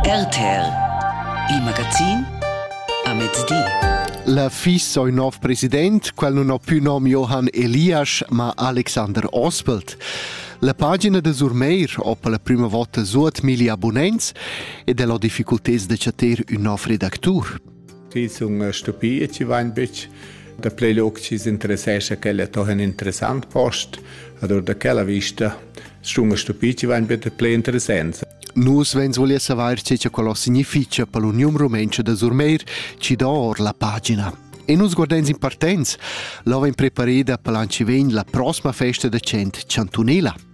RTL Il magazin a mezdi. La fis ò ün nov president, quel nun ho più nom Johann Elias, ma Alexander Ospelt. La pagina de Surmeir ho per la prima volta suot milli abonnents ed el ho difficultés de chatter ün nov redactur. Schi sun stupì e ci vain bütsch da plü lung chi s'interessescha ch'ella toja ün interessant post. Allura da quella vista sun stupì chi vain büt plü interessants. Nus vegns voler savair tge che quello significa per l'Uniun Rumenca da Surmeir ci do or la pagina. E nus guardens in partens, l'ova in preparida per l'anci vegn la prossima festa da cent Chantunela.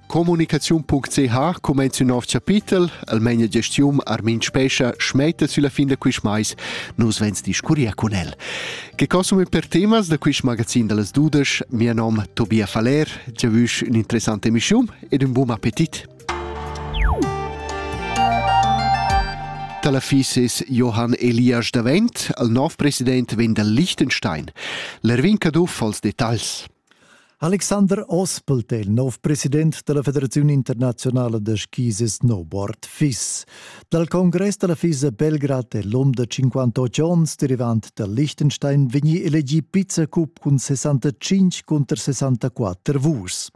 Communicaziun.ch cumenza ün nov chapitel, almain la gestiun Armin Spescha schmetta sülla fin da quist mais. Nus vens discurrir cun el. Che consuma per temas da quist magazin da las dudesch? Mia nom Tobia Faller, già vüsch un'interessante emischiun ed un buon appetit. Talafis es Johann Elias davent, al nov president vegn dal Liechtenstein. L'Erwin Caduff als detagls. Alexander Ospelt è il nov president della Federazione Internazionale de Skis e Snowboard FIS. Dal Congress della FIS a Belgrad è l'um de 58 onns, derivant dal Liechtenstein, vegni elegì Vizecup cun 65 contro 64 vus.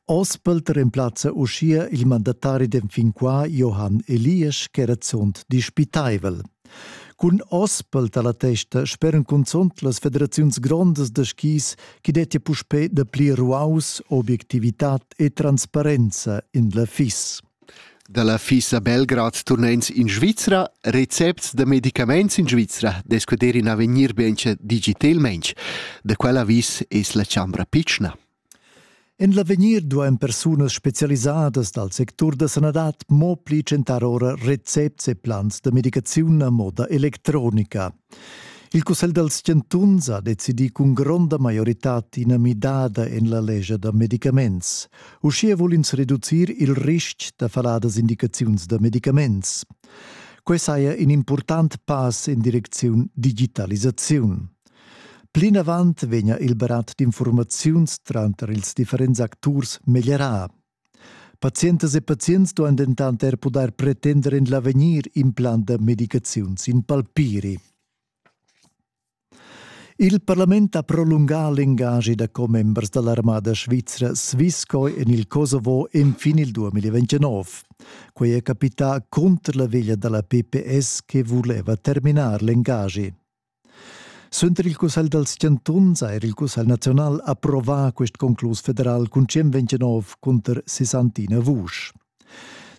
Ospelt remplazza uschia il mandatari d'enfin qua Johann Eliasch, ch'era zunt dispitaivel. Cun ospel dalla testa speran cunzunt las federaziuns grondas da skis che dettia puspè dapli ruaus, obiectivitad e transparenza in la FIS. Dalla FIS a Belgrad turnens in Svizra, recepts da medicaments in Svizra discuter in avegnir bianche digitalment. Da quella vis es la chambra pitschna. En l'avegnir duain persunas spezialisadas dal sectur da sanadad mo pli tschentar ora recepts e plans da medicaziun a moda electronica. Il Cussegl dals chantuns ha decidì cun gronda maioritad ina midada en la lescha da medicaments. Uschia vul ins reducir il ristg da faladas indicaziuns da medicaments. Quai saja in impurtant pass in direcziun digitalisaziun. Plinavant vegna il barat d'infurmaziuns tranter ils differents acturs meglierà. Pazientas e pazients duan dentant er pudair pretender en l'avegnir implant da medicaziuns in palpiri. Il parlament ha prolungà l'engagi da commembers da l'armada svizra Swisscoi en il Kosovo enfin il 2029. Quei è capità cunter la veglia dalla PPS che vuleva terminar l'engagi. Suenter il Cussegl dals chantuns ha er il Cussegl naziunal approvà quest conclus federal cun 129 cunter 61 vusch.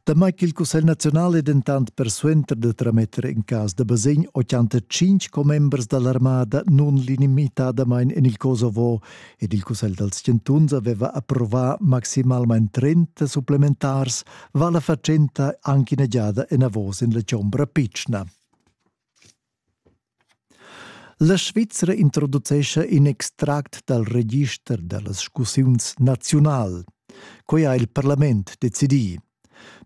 Damai ch'il Cussegl naziunal è dentant persuenter da trametter in cas da basegn 85 commembers da l'armada nun limitatamain en il Kosovo ed il Cussegl dals chantuns aveva approvà maximalmain 30 supplementars, va la fatschenta anche ina giada enavos en la chombra pitschna. La Svizra introducescha in extract dal register da las scussiuns naziunal. Quai ha il parlament decidì.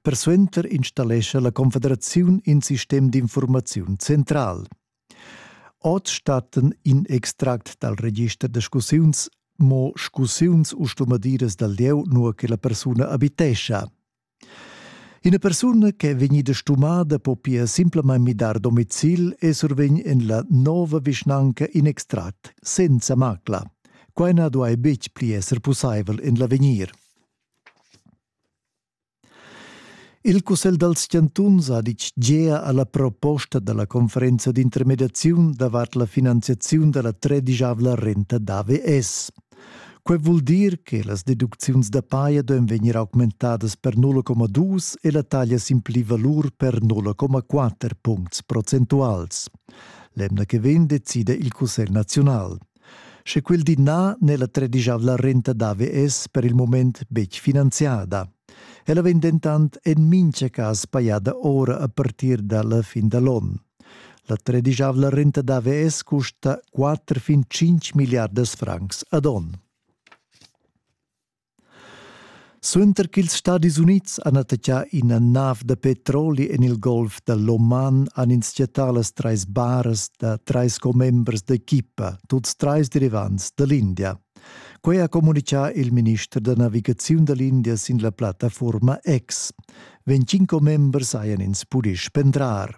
Persuenter installescha la Confederaziun in sistem d'infurmaziun central. Oz stattan in extract dal register da scussiuns mo scussiuns u stumadiras dal lieu, nua che la persuna abitescha. Ina persuna che è vegnida stumada po pia simplamain midar domicil e survegn en la nova vischnanca in extract senza macla. Quai na duai betg pli esser pussaivel en l'avegnir. Il Cussegl dals chantuns ha ditg gea a la proposta da la conferenza d'intermediaziun davart la finanziaziun da la tredischavla renta d'AVS. Quei vul dir che las deducziuns da paia duein vegnir augmentadas per 0,2 e la taglia sin pli valur per 0,4 puncts procentuals. L'emna che vegn decida il Cussegl nazional. Sche quel di na n'è la tredigiavla renta d'AVS per il moment betg finanziada. Ella vegn dentant en mintga cas pajada ora a partir dalla fin da l'onn. La tredischavla renta da VS custa 4 fin 5 milliardas francs ad on. Suenter ch'ils Stadis Unids han attaccà ina nav da petroli en il golf da l'Oman han ins chattà las trais baras da trais commembers d'equipa, tuts trais derivants da l'India. Quei ha comunicà il minister da navigaziun da l'India sin la plattafuorma X. Venticinque members hajan ins pudì spendrar.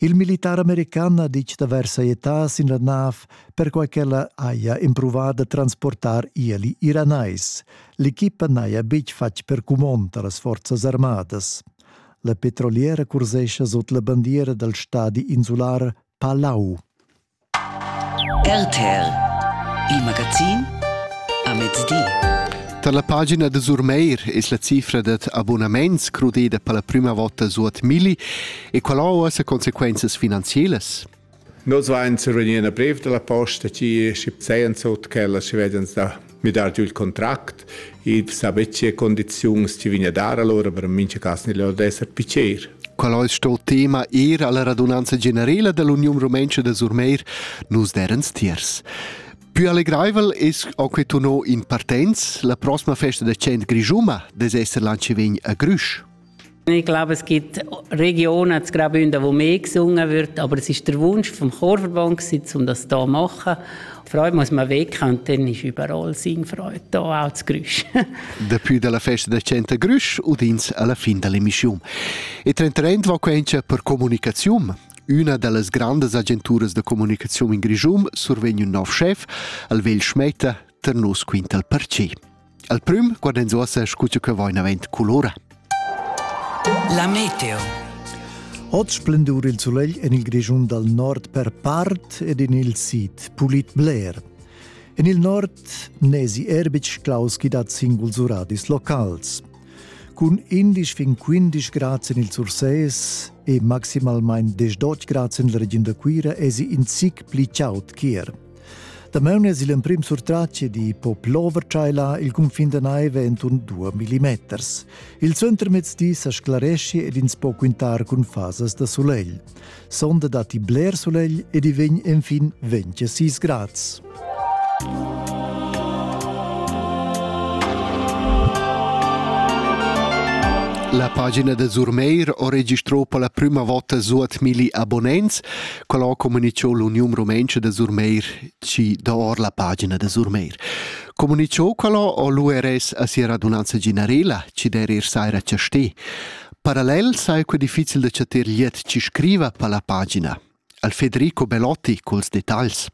Il militar american ha ditg d'avair sajetà sin la nav perquai ch'ella haja empruvà da transportar ieli iranais. L'equipa n'haja betg fatg per cumond a las forzas armadas. La petroliera cursescha sut la bandiera dal stadi insular Palau. RTL, il magazin a mezdi. Tar la pagina da Surmeir es la cifra dad abunaments crudeda per la prüma vota suot milli e qual ho uossa consequenzas finanzielas? Nus vain sur vegnir a brev da la posta chi schi pzeian sut quellas chi vedans da midar giu il contract e saber tge condizions ci vegna dar allora per mincha cas nel lor d'esser picer. Qual eis sto tema ir alla radunanza generala dell'Union Rumenca de Surmeir nus derens tiers. Più allegraivel es a que tuno in partenz la prossima festa de cent Grisuma des esser lanci vegn a Grüsch. Ich glaube, es gibt Regionen, zu Graubünden, wo mehr gesungen wird, aber es ist der Wunsch vom Chorverband, um das hier zu machen. Freude muss man weg und dann ist überall Singfreude da, auch das Grüsch. Depuis dalla festa del Centro Grüsch udins alla fin dell'emissione. E Trend Trend va quencha per comunicazione. Üna dallas grandas agenturas da comunicazione in Grischum survegn un nov chef, al Vel Schmetta, ter nos quintal per ce. Al prüm guardans uossa scu che vain avent culura. La meteo. Ot splendur il sulegl en il Grischun dal nord per part ed in il sid pulit bler. En il nord nesi Erbic Klaus chi dat singuls uradis locals. Cun 11 fin 15 grads en il Sursees e maximalmain 18 grads en la regiun da Cuira esi in zic pli chaud chier. Damaun es il emprim surtratg di po plover-tschaila il cunfin da naiva enturn 2 millimeters. Il suentermezdi sa sclaresci ed ins po quintar cun fasas da sulegl. Sonda datti bler sulegl ed i vegn enfin 26 grads. La pagina da Zurmeir ho registrò per la prüma vota suot milli abonnents. quel ho comunichou l'Uniun Rumentscha da Surmeir ci dor la pagina da Surmeir. Comunichou quello o l'URS a sia radunanza generela, ci der ir saira chaste. Parallel sai que difficil da chatter liet ci scriva per la pagina. Al Federico Belotti culs detagls.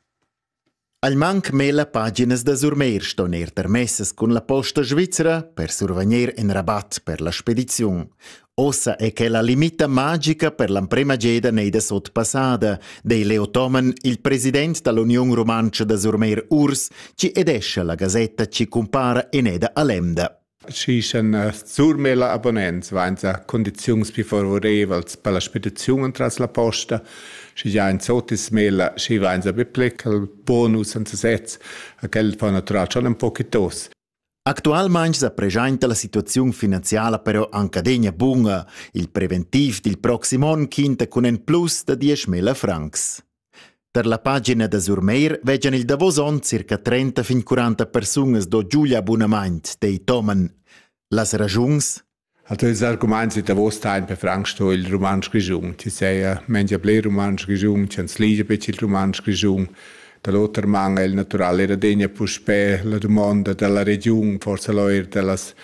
Ei manc mella paginas da Surmeir ston ir tarmessas cun la posta svizra per survegnir in rabat per la spediziun. Ossa è quella limita magica per l'emprema geda nei da sotpassada, dei Leo Toman, il president dall'Union Rumantscha da Surmeir Urs, ci edescha la gasetta ci compara in eda a Lemda. Schi shan eh, surmel abonnents vainsa condiziuns pü favorevels per la spediziun entras la posta. Schi già in sotismela, schi vainsa be plecal bonus senza sez, a quel fa natural schon un po tos. Actualmaing sa preschainta la situaziun finanziala però anche adegna bunga. Il preventiv dil proxim on quinta cun en plus da 10.000 francs. Per la pagina da Surmeir vegian il davos onn circa 30 fin 40 persunas do giu gli abunament, dei Toman. Las ragiuns? Also ils arguments da davos ein per Frank sto il romansch grischun. Ti sei mengia ple romansch grischun, ti ans ligia bec il romansch grischun. Dall'oter man è il natural era degna puspè la domanda dalla regiun, forse l'oir dellas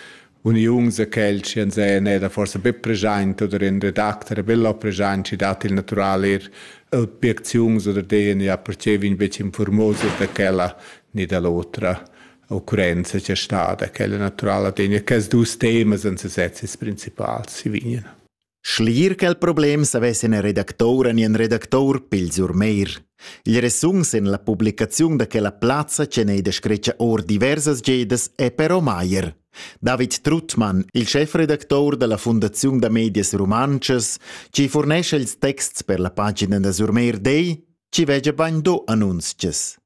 uniuns e quel chi ans en eda forsa be present oder in redacter vella present chi dat il natural eir objecziuns oder denia percevin bec informosas da quella ni da l'otra occurrenza che sta da quella naturala degna. Quels dus temas ans sezis principals si vignan. Schliir quel problem savess ina redactoura ni in redactour pils urmeir. Il resun sen la publicaziun da quella plazza che n'ei da scretgia or diversas gedas è però Maier. David Truttmann, il chefredactor dalla Fundaziun da medias rumantschas, ci furnescha ils texts per la pagina da Surmeir Dei, ci vegia bagn do annunzches.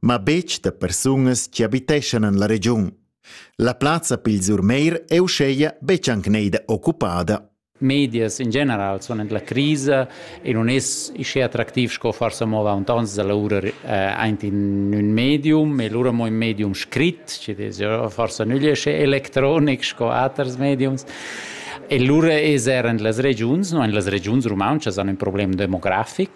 ma betg da persunas chi abiteschan en la regiun. La plazza pils Urmeir è uscheia betg anc neida occupada. Medias in general sono la crisa e non è isce attractiv sco forse mova un tons da lavora aint in un medium e lura mo in medium scrit ci desi forse non esce electronic sco aters mediums e lura es er en las regiuns no en las regiuns rumantschas hanno un problem demografic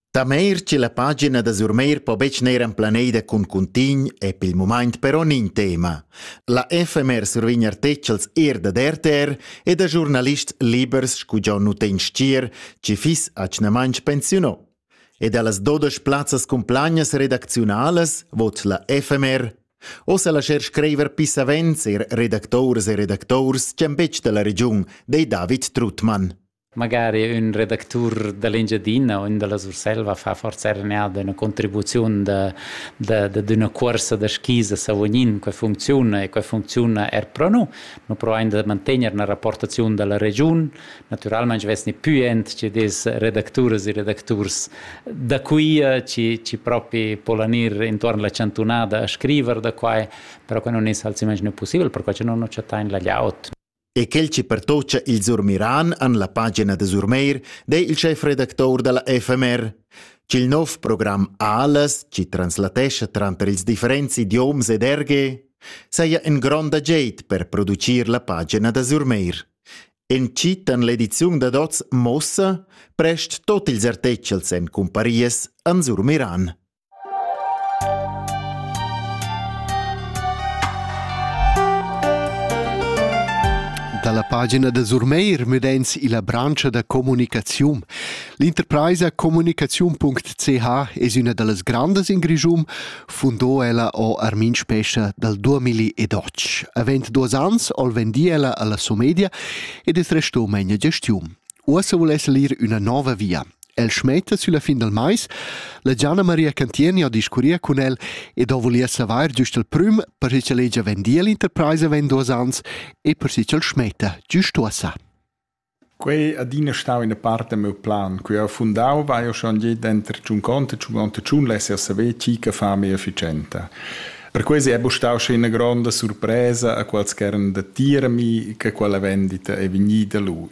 Tameir che la pagina da Surmeir po betg neir emplaneda cun cuntign è pel mumaint però nin tema. La FMR survign artechels er da RTR e da giurnalists libers scu già nu ten stier, ci fis acnamaint pensiuno. E da las dodosh plazzas cun plagnas redacziunalas vot la FMR. Ossa lascher screiver pissavents er redactores e redactors ch'en betg da la regiun, dei David Trutmann. Magari ün redactur da l'Engiadina o ün da la Surselva fa forsa er eneada üna contribuziun da da dad üna cuorsa da skis a Savognin. Quai funcziuna e quai funcziuna er pro nu. Nu provain da mantegner üna rapportaziun da la regiun. Natüralmaing vesni pü aint chi'd es redacturas e redacturs da quia chi chi propi polan ir intuorn la chantunada a scriver da quai, però quai nun es ha'l simmaginà pussibel perquai cha nun nu chattain la glieud. E quel che pertoccha ils Urmiran en la pagina da Surmeir dei il chefredactor dalla FMR ch'il nov program Alas, chi translatescha tranter ils differents idioms ed erge, saja in gronda geit per producir la pagina da Surmeir. Encittan l'ediziun dad oz mossa prest tot ils artechels en cumparias an Surmiran. Dalla pagina da Surmeir müd'ins illa branscha da comunicaziun. L'interpraisa comunicaziun.ch es üna da las grandas in Grischun, fundò ella o Armin Spescha dal 2012. Avent duos ans o'l vendi ella alla Somedia ed es resto megna gestiun. Uossa vuless el ir üna nouva via. El schmetta sulla fin dal mais. La Gianna Maria Cantieni ha discurria cun el ed ha vulia savair giust il prüm per che ch'el hegia vendia l'interpraisa vegn duos ans e per che ch'el schmetta giust uossa. Quei adina stau in parte meu plan, que ho fundau vai ho schon je denter tschun conte e tschun onte tschun lesse a saver chi che fa mia efficienta. Per quasi è stau sche una gronda sorpresa a quals ch'eran da tirami che quella vendita è vegnida lu.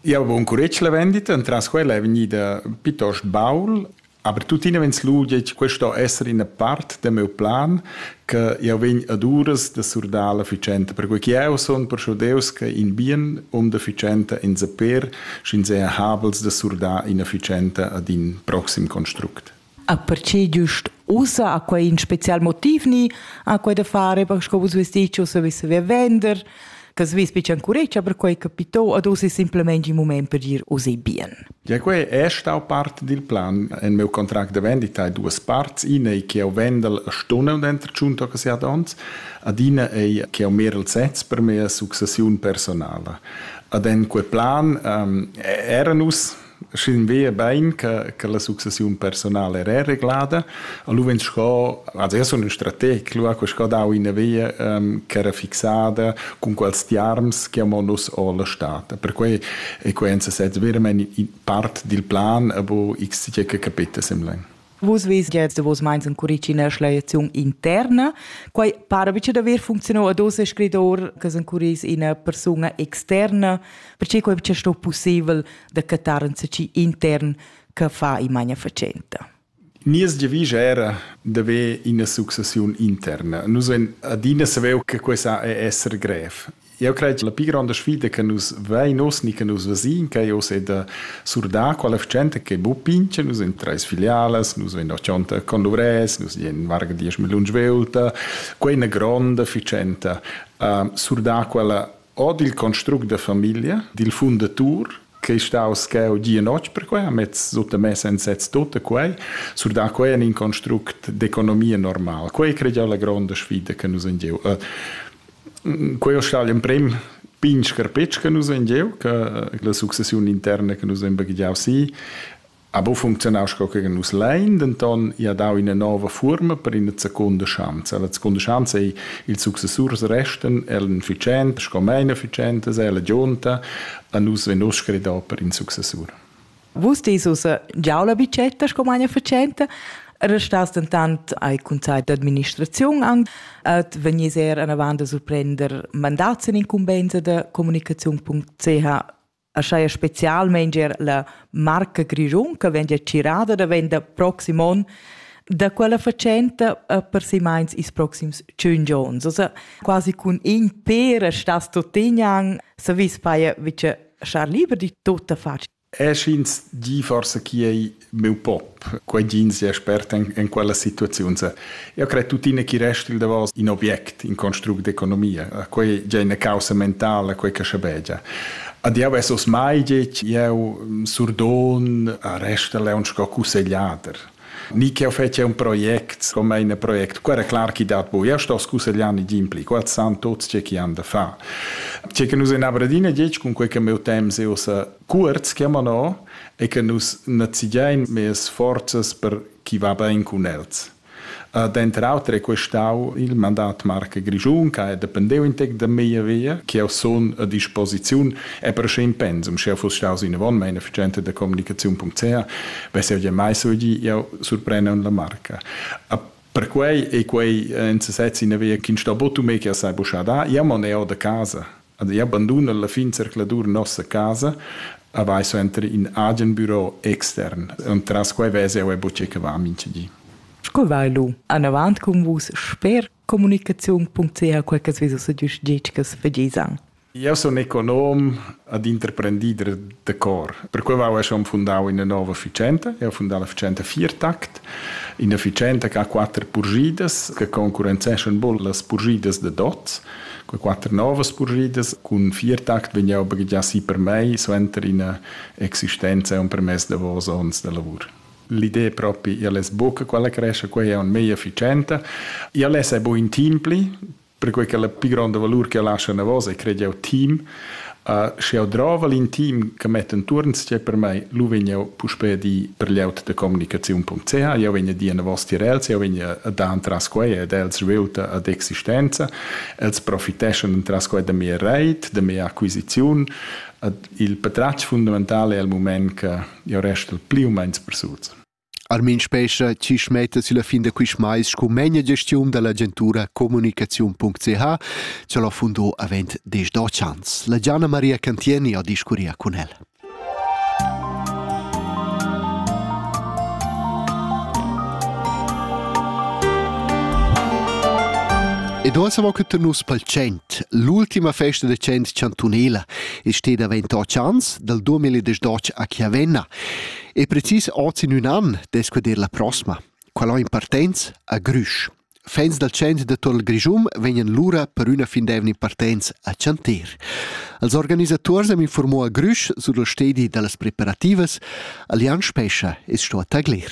Jau vom curetg la vendita, entras quella è vegnida piuttost baul, aber tuttina vegns lu detg, questo sto esser ina part da meu plan, che jau vegn ad uras da surdar la ficenta, perquei che jau son perschudeus che in bien um da ficenta in saper, sch'in seha habels da surdar ina ficenta ad in proxim construct. A perche giust ussa ha quai ün special motiv ni ha quai da far eir sco vus vus dit ch'eu savess via vender, che svess be chancuretscha perquai che pitò ad uss es simplamaing ün mumaint per dir usi bien. Ja, quai è stau part dil plan. En meu contract de vendita hai duas parts. Ina ei che eu vendel a stunde und entro giunto che siat ons. Adina ei che eu mer el sez per mia successiun personala. Ad en quei plan ähm, era nus Schin vea bain che, che la successiun personala era reglada. Allora sco, also io sono un strateg, lui ha sco dau ina via um, che era fixada con quals tiarms chiamonos o la stat. Per cui e quenza sez vermen in part del plan, abo x che capita semlen. Vus vis che da vos meins encuritschina schleiaziun interna. Quai para bice da ver funzionau a dos scridor che encuris ina persuna externa, perché quai bice sto possibel da catar in seci intern che fa in magna facenta. Nies giavisch era da ver ina successiun interna. Nus en adina saveu che questa è esser grev. Jeu cret che la pli gronda sfida che nus vein oz ni che nus vesin quei oz ei da surdar quella gente che bu pincha nus in treis filialas, nus vein da tschonta con dovres, nus dien varga diesch milliun svelta, quei ina gronda ficenta. Uh, surdar quella od il construct da famiglia, dil fundatur, che è staus cheu gia notg per quei, amez sutta messa en sez tutta quei, sur da quei en in construct d'economia normal. Quei cred jeu la gronda sfida che nus in giu. Uh, Quei ho stat gl'emprem pign scarpetsch che nus hain gieu, che la successiun interna che nus hain baghegiau si ha buca funzionau sco che nus lein, denton i ha dau ina nova fuorma per ina seconda schanza. La seconda schanza ei ils successurs restan ella efficienta sco mein efficienta, ella gionta, a nus vegn uss scredau per in successur. Vus dis ussa, giau la bicetta sco magna fatschenta, restas dentant ai consell d'administraziun an, et vegnis er anavant a surprender mandats in incumbensa da communicaziun.ch aschaia specialmente er la marca Grischun che vegn girada da venda proxim on da quella fatschenta per si meins is proxims 5 ons. Also quasi cun in per stas tuttignang, savis paia vice schar liber di tutta faccia. E sch'ins di forse chi ei meu pop, quei din sia expert en, en quella situaziun se. Io cre tutine chi rest il davos in object, in construct d'economia. Quei già una causa mentale, quei che schabegia. Ad jau esos mai gec, jau surdon a resta le un sco cussegliater. ni ch'eu fetja un project come in project. Quera clar chi dat bu. Eu sto scussegliani gimpli, qua san tots che chi han da fa. Ce che nus en Aberdeen diec cun quei che meu temps eo sa cuorz chiamano e che nus nazigiain mes forzas per chi va ben cun els. Uh, Denter auter è questau il mandat marca grigiun, che dependeu in tec da mia via, che eu son a disposiziun E per sch'in pensum, sch'jeu fuss staus inavon manaficenta da communicaziun.ca, vess jeu gia mai saviu jau surprender la marca. Perquei ei quei en sesez ina via ch'ins sta buca mei che sai buca dar. Jau mon eo da casa. Io abandun alla fin zercladur nossa casa a vai suenter in agen büro extern. Und tras quei vess jau buca che va mintgadi. Sco vai lu? Anavant cun vus sper communicaziun.ca quai che svizos e gius gitgas vegisan. Jau sun econom ed interprendider da cor. Perquai jau hai schon fundau ina nova efficienta. Jau fundau l'efficienta Viertakt, ina efficienta che ha quatter purgidas che concurrenzeschan bol las purgidas da dots. Quei quatter novas purgidas cun Viertakt vegn jau baghegiar si per mei suenter ina existenza e un permess davos onns da lavur. L'idea propi, ella es buca quella crescha, quella è meglio efficiente. Ella è buin in team pli, perquei che la più gronda valur che lascia una voce è crei jau team. Uh, sche jau drova in team che mette intorno c'è per me, lo vegn jau puspè di per l'aut de communicazione.ch, io vegn a dire una vostra els, io vegn a dar tras quei ed els rivelta ad existenza, els profiteschan tras quei da mia reit, da mia acquisizione. Il patratg fundamentale è il moment che Io resto pli u meins persuts. Armin Spescha ci smetta sulla fin da quist mais sco megna gestiun dall'agentura comunicaziun.ch che l'ho fundò avent des dotg ans. La Gianna Maria Cantieni ha discurria con el. Ed ora siamo che nus pal 100, l'ultima festa da 100 chantunela, e steda 28 ans dal 2018 a Chiavenna e precis oz in un an descuedir la prossma. Qual ho in partenz a Grüsch. Fans dal centro de Tor Grischum vegnan lura per üna fin d'evna in partenz a Chantir. Als organisators am informò a Grüsch sur il stedi da las preparativas. Allianz Spescha es sto a taglir.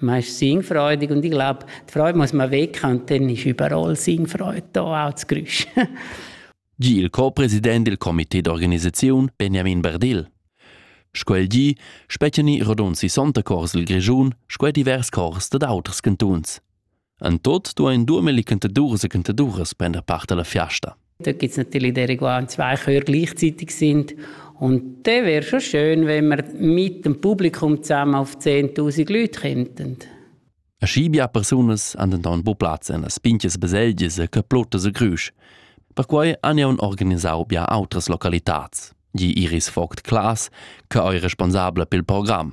man ist singfreudig und ich glaube, die Freude muss man weg und dann ist überall Singfreude da, auch das Geräusch. Gi il co-president del comité d'organisaziun Benjamin Berdil. Sco el gi, spetgeni rodund 60 cors il Grischun, sco divers cors dad auters cantuns. En tot duein durmeli cantaduras e cantaduras prender part alla fiasta. Da gibt es natürlich die Reguards, zwei Chöre gleichzeitig sind. Und das wäre schon schön, wenn wir mit dem Publikum zusammen auf 10.000 Leute könnten. A Schibia persunas han denton bu plaz en las pinches baselgias e caplotas e grüsch. Perquai han jau organisau bia outras localitats, gi Iris Vogt Klaas, che ei responsabla pel program.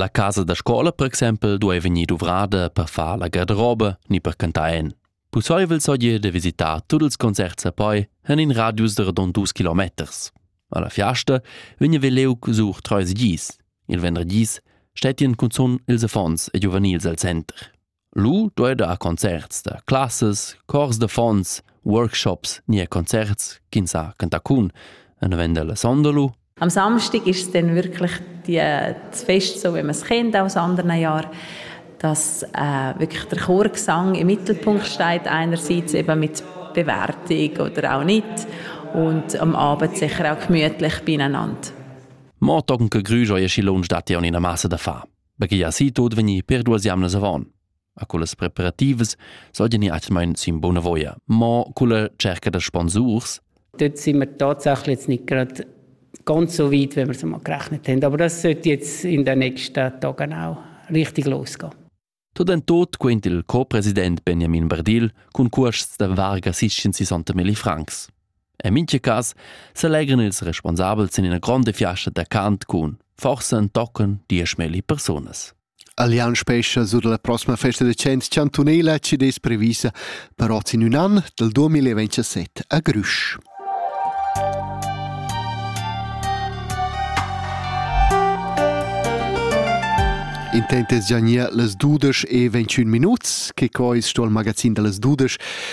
La casa da scola per exempel duei vegnir duvrada per far la garderoba ni per cantar en. Pusseivel sogir de visitar tut ils concerts a poi en in radius de rodon dus kilometers. Alla fiasta vegna Veleuc sur treis gis. Il venderdis stettien cunzun ils affons e giuvenils al center. Lu duei dar concerts da classas, cors d'affons, workshops ni er concerts ch'ins ha cantacun en november la sonda lu. Am Samstag ist es dann wirklich die, das Fest, so wie man es kennt aus anderen Jahren, dass äh, wirklich der Chorgesang im Mittelpunkt steht, einerseits eben mit Bewertung oder auch nicht und am Abend sicher auch gemütlich beieinander. Mo tocken che Grüger je Schilon stat ja in einer Masse da fa. perche ja si tot vegnir per duas jamnas avon. A cullas preparativas sollten ni atmain sin bona voia, mo culla cerca da sponsurs dort sind wir tatsächlich jetzt nicht gerade ganz so weit, wie wir es einmal gerechnet haben. Aber das sollte jetzt in den nächsten Tagen auch richtig losgehen. Tot en tot quent il co-president Benjamin Bardil cun cuosts da varga 660 francs. En mintga cas selegran ils responsabels in ina gronda fiasta da cant cun forsa tochen dieschmilli persunas. Allianz Spescha sur la prossima festa da cent chantunela ci des previsa per oz in un an del 2027 a Grüsch. Intentes giania las dudesch e 21 minuts, che co is sto al magazin da las dudesch